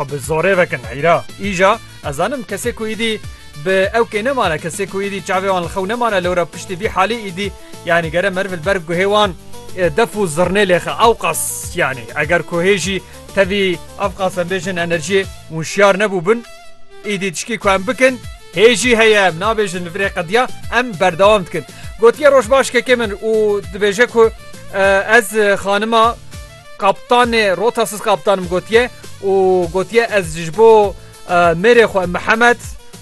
Bi zorê vekin heyra. Îja ez zanim kesê ku îdî bi ew kê nemane kesê ku îdî çavê wan li xew nemane lewra piştî vî halî îdî yanî gere meriv li ber guhê wan def û zirnê lêxe ewqas yanî eger ku hê jî tevî ewqas em bêjin enerjiyê wişyar nebûbin îdî tişkî ku em bikin hê jî heye em nabêjin li virê qediya em berdewam dikin gotiye roj baş kekê min û dibêje ku ez xanima Kaptanê rota siz kaptanim gotiye û gotiye ez ji bo mêrê xwe Mihemed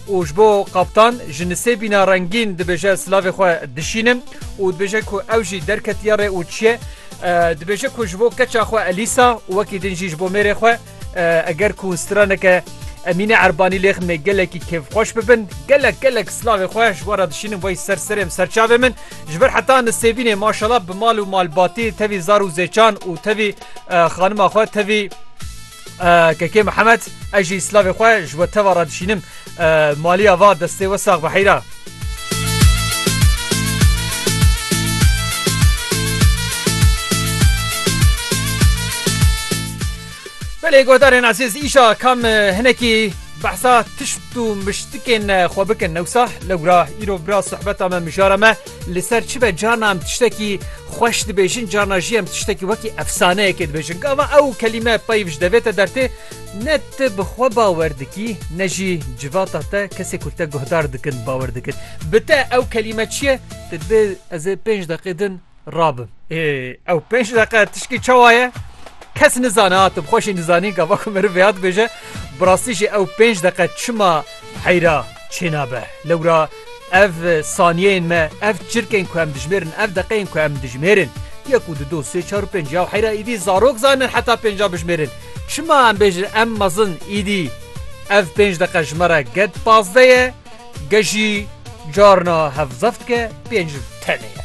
û ji bo kaptan ji nisêbîna rengîn dibêje silavê xwe dişînim û dibêje ku ew jî derketiye rê û çiye. Dibêje ku ji bo keça xwe Elîsa û wekî din jî ji bo mêrê xwe Eger ku straneke Emîne Erbanî lêx me gelekî kêfxweş bibin, gelek gelek slavê xwe ji wara dişînin wey ser serê min ser çavê min. Ji ber heta nisêbînê maşala bi mal û malbatî tevî zar û zêçan û tevî xanima xwe tevî Kekê Mihemed ez jî slavê xwe ji we teva re dişînim. Maliya va destê we sax be heyra. Belê godarên ezîz îşa kam hinekî behsa tişt û miştikên xwe bikin newsa lewra îro bira sohbeta me mijara me li ser çi be carna em tiştekî xweş dibêjin carna jî em tiştekî wekî efsaneyekê dibêjin gava ew kelîme peyv ji devê te dertê Ne tu bi xwe bawer dikî ne jî civata te kesê ku te guhdar dikin bawer dikin. Bi te ew kelîme çi ye? Tu dê ez ê pênc deqê din rabim. Ê ew pênc deqe tişkî çawa ye? Kes nizane ha tu bi xwe jî nizanî gava ku meriv vêya dibêje. Bi rastî jî ew pênc deqe çima Heyra çênabe lewra ev saniyeyên me, ev çirkên ku em dijmêrin, ev deqeyên ku em dijmêrin, yek û du do sê çar û pênc ya heyra îdî zarok zanin heta pêncan bijmêrin. Çima em bêjin em mezin îdî ev pênc deqe ji me re ged pazdeh ye, ged jî carna hevzeft ke pênc tenê ye.